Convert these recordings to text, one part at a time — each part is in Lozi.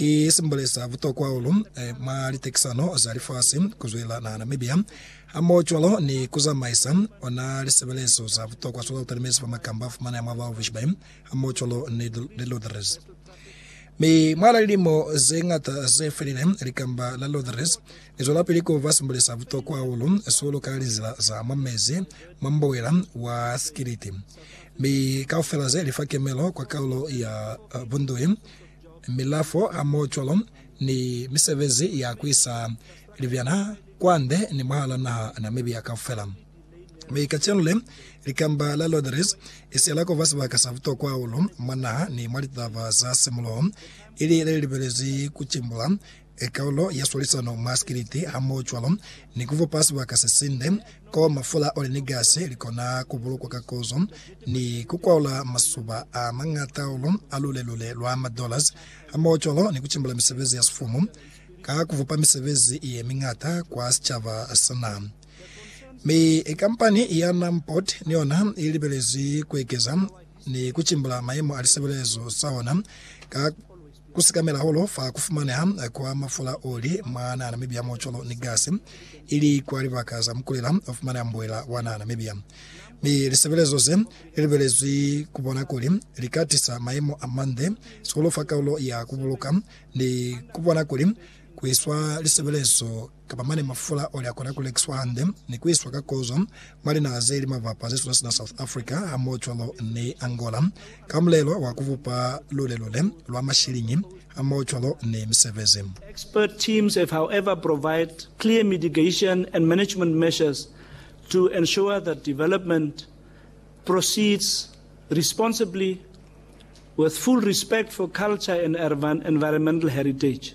I simbulisa butokwa hahulu mwa litekisano za lifasi kuzwela naha Namibia hamohocwalo ni kuzamaisa ona lisebelezo za butokwa zwa lutalimezi fa makamba afumaneha mwa Walvis Bay hamohocwalo ni Lodres. Mi mwa lilimo zeñata zefelile, likamba la Lodres lizwelapili kuba simbulisa butokwa hahulu sihulu ka linzila za mwa mezi mwa mbuwela wa sikiliti, mi kaufela ze lifa kemelo kwa kaulo ya bunduhi. milafo a mocolo ni misebezi ya kuisa libyana kwande ni mwahala naha Namibia kaufela. Mi kacenu le, likamba la Lotteries ise la kuba sibaka sa butokwa hahulu mwa naha ni mwa litaba za simuloho, ili lelibelezwi kucimbula e kaulo ya swalisano mwa sikiliti hamohocwalo ni kufupa sibaka sesinde ko mafula oli ni gasi likona kubulukwa ka kozo, ni kukwaula masuba a mañata hahulu a lule-lule lwa ma dollars, hamohocwalo ni kucimbula misebezi ya sifumu ka kufupa misebezi yemiñata kwa sicaba sena. Mi kampani ya Numport ni yona ilibelezwi kuekeza ni kucimbula mayemo a lisebelezo sa hona ka Ku sikamela holo fa ku fumaneha kwa mafula oli mwa na Namibia mo colo ni gasi ili kwa libaka za mukulela o fumaneha mbuela wa na Namibia. Mi lisebelezo ze li lubelezwi ku bona kuli li ka tisa mayemo a mande sihulu fa kaulo ya ku buluka ni ku bona kuli ku iswa lisebelezo Kapa mane mafula oli akona kulekiswa hande ni kuiswa ka kozo mwa linaha zeli mabapa zesuna sina South Africa hamohocwalo ni Angola ka mulelo wa kubupa lulelule lwa mashilingi hamohocwalo ni misebezi. Expert teams have however provide clear mitigation and management measures to ensure that development proceeds responsibly with full respect for culture and environmental heritage.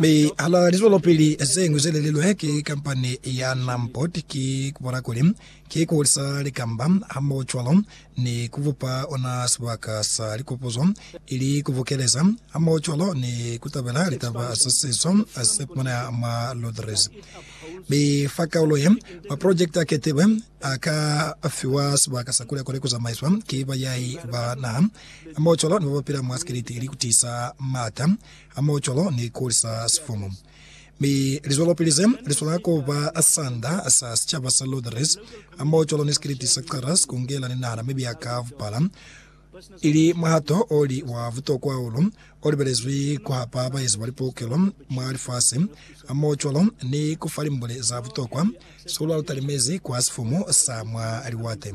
Mi hala lizwelopili zeñwi ze lelilwe ki kampani ya Namport ki kubola kuli ki kuhulisa likamba hamohocwalo ni kubupa ona sibaka sa likopuzo ili kubukeleza hamohocwalo ni kutabela litaba za sizo zefumaneha mwa Lodres. Mi fa kaulo ye, maprojekiti aketilwe aka fiwa sibaka sa kule kuli kuzamaiswa ki bayahi ba naha hamohocwalo ni babapila mwa sikiliti ili kutiisa maata hamoho cwalo ni ku lisa sifumu. Mi lizwelopili ze li swanela ku ba sanda sa sicaba sa Lutherese hamoho cwalo ni sikiliti sa Xeres ku ngela ni nahana mibi ya ka bupala, ili muhato o li wa butokwa hahulu o libelezwi ku hapa baezi ba lipukelo mwa lifasi hamoho cwalo ni ku fa limbule za butokwa, sihulu ha lu talimezi kwa sifumu sa mwa liwate.